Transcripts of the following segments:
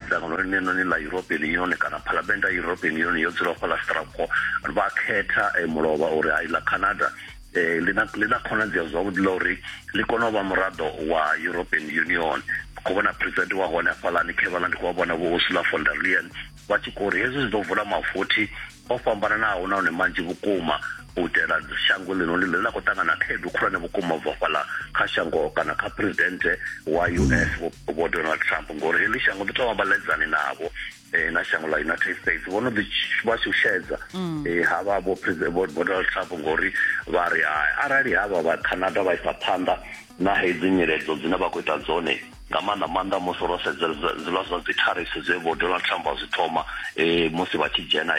dzangano ḽinenoni ḽa european union kana phalamennde ya european union yo dzula fhaḽa strasbourg vha khetha eh, mulovha uri hai ḽa canada eh, ḽi na khonadzeo zwavhuḓi ḽa uri ḽi kone u vha muraḓo wa european union khou vhona president wa hone hafhaḽani khevala ndi khou vha vhona vho ursula von der leyen vha tshi khou uri hezwi zwi ḓo vula mavothi o fhambananaho nahone manzhi vhukuma u itela shango ḽino ḽine ḽa khou ṱangana khaedu khulwane vhukuma u bva fhaḽa kha shango kana kha presidente wa us vho donald trump ngori heḽi shango ḓi tovha vhaledzani navho um na shango ḽa united states vho no ḓi vha shushedza um havha vho vho donald trump ngori vha ri arali havha vha canada vha isa phanḓa na hedzi nyiledzo dzine vha khou ita dzone nga maanḓa maanḓa musi ro sedza zwiḽa zwa dzi tariffs zwe vho donald trump a zwi thoma um musi vha tshi dzhena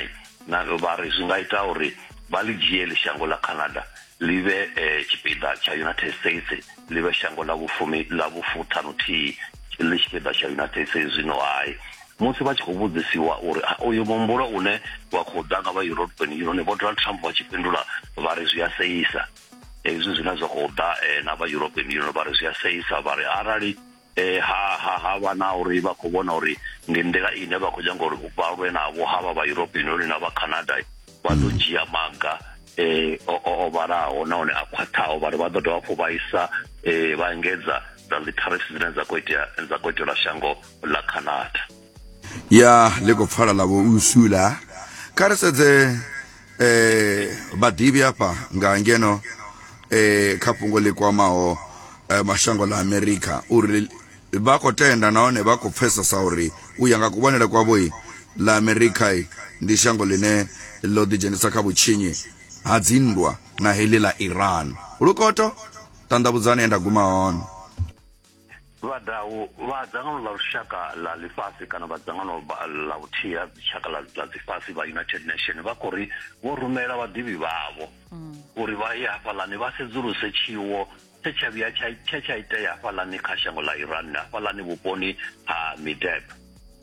na vha ri zwi nga ita uri vha ḽi dzhieli shango ḽa canada ḽi vhe um tshipiḓa tsha united states ḽi vhe shango ḽa vhufumi ḽa vhufuṱhanuthihi ḽi tshipiḓa tsha united states zwino hai musi vha tshi khou vhudzisiwa uri uyu muhumbulo une wa khou ḓa nga vha european union vho donald trump vha tshi fhindula vha ri zwi a seisa hezwi zwine zwa khou ḓa eh, na vha european union vha ri zwi a seisa vha ri arali eh, ha ha ha vha na uri vha khou vhona uri ndi nḓila ine vha khou nyanga uri vha lwe navho ha vha vha european union na vha canada vha ḓo mm. dzhia maga eh, o, o, o vhalaho nahone a khwaṱhaho vha ri vha ḓo dovha hafhu vha isa eh, vha engedza dza dzi tariffs dzine dza khou itea dza khou itelwa shango ḽa canada ya ḽi khou pfala ḽa vho nsula kha ri sedze eh vhaḓivhi afha nga ngeno eh kha fhungo ḽi kwamaho eh, mashango ḽa amerika uri vha khou tenda nahone vha khou pfesesa uri u ya nga kuvhonele kwavho i ḽa amerika i ndi shango ḽine ḽo ḓidzhenisa kha vhutshinyi ha dzinndwa na heḽi ḽa iran lukoto ṱanḓavhudzani e nda guma hone vhadau vha dzangano ḽa lushaka ḽa ḽifhasi kana vha dzangano ḽa vhuthihi ha dzitshaka ḽa ḽifhasi vha united nation vha khou ri vho rumela vhaḓivhi vhavho mm. uri vha ye hafhaḽani vha sedzuluse tshiwo tshe tsha vhuya tshe tsha itea hafhaḽani kha shango ḽa iran hafhaḽani vhuponi ha mideb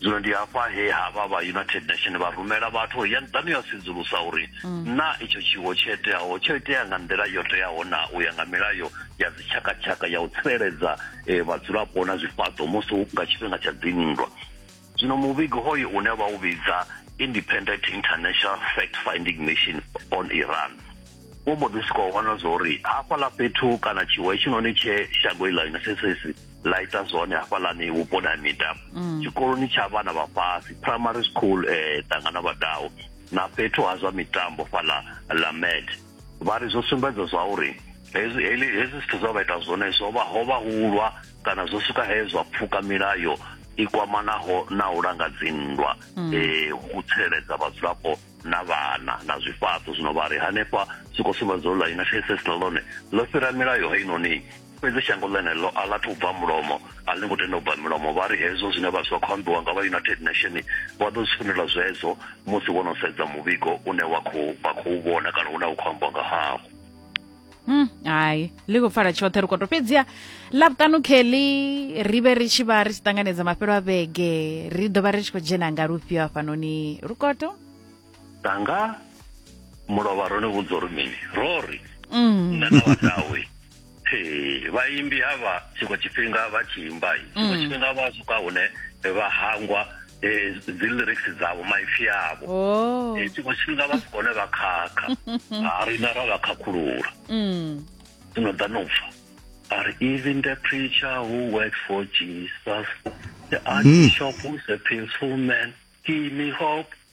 Zwino ndi hafha he havha vha United Nation vha rumela vhathu uri yani ḓani ya sedzulusa uri mm. na itsho tshiwo tsho iteaho tsho itea nga nḓila yo teaho na u ya nga milayo ya dzitshakatshaka ya u tsireledza eh, vhadzulapo na zwifhaṱo musi nga tshifhinga tsha dzinndwa zwino muvhigo hoyo une vha u vhidza independent international fact finding mission on iran wo mbo ḓi swika u vhona zwa uri hafhaḽa fhethu kana tshiwo hetshinoni tshe shango iḽa united states ḽa ita zwone hafhaḽani vhuponi ha miḓa mm. tshikoloni tsha vhana vha fhasi primary school um eh, ṱangana vhadau na fhethu ha zwa mitambo fhaḽa ḽa med vha ri zwo sumbedza zwa uri hezwi hezwi zwithu zwa vha ita zwone zwo vha ho vha hulwa kana zwo swika he zwa pfuka milayo i kwamanaho na u langa dzinndwa um u tsireledza vhadzulapo na vhana na zwifhaṱo zwino vha ri hanefha zwi khou sumbedza u ḽa united states na ḽone ḽo fhira milayo heinoni Fhedzi shango ḽeneḽo a ḽa thu bva mulomo, a ḽi ngo tenda u bva milomo. Vha ri hezwo zwine vha zwa khou ambiwa nga vha United Nation vha ḓo zwi fhindula zwezwo musi vho no sedza muvhigo une wa khou vha khou vhona kana une u khou ambiwa nga hawo. Mm, hai ḽi khou pfala tshoṱhe ri koto fhedziha ḽavhutanu kelly ri vhe ri tshi vha ri tshi ṱanganedza mafhelo a vhege ri ḓo vha ri tshi khou dzhena nga lufhio hafhanoni rukoto tanga mulovha ro ni vhudza uri mini ro ri mm. nṋe na vhadawe vhaimbi havha tshiṅwe tshifhinga vha tshi imba tshiṅwe mm. tshifhinga vha swika hune vha hangwa eh, dzi lyrics dzavho maipfi avho oh. eh, tshiṅwe tshifhinga vha si kone vha khakha a rina ra vha khakhulula mm. dzino ḓa no pfa are even the preacher who works for jesus the archbishop mm. who's a peaceful man give me hope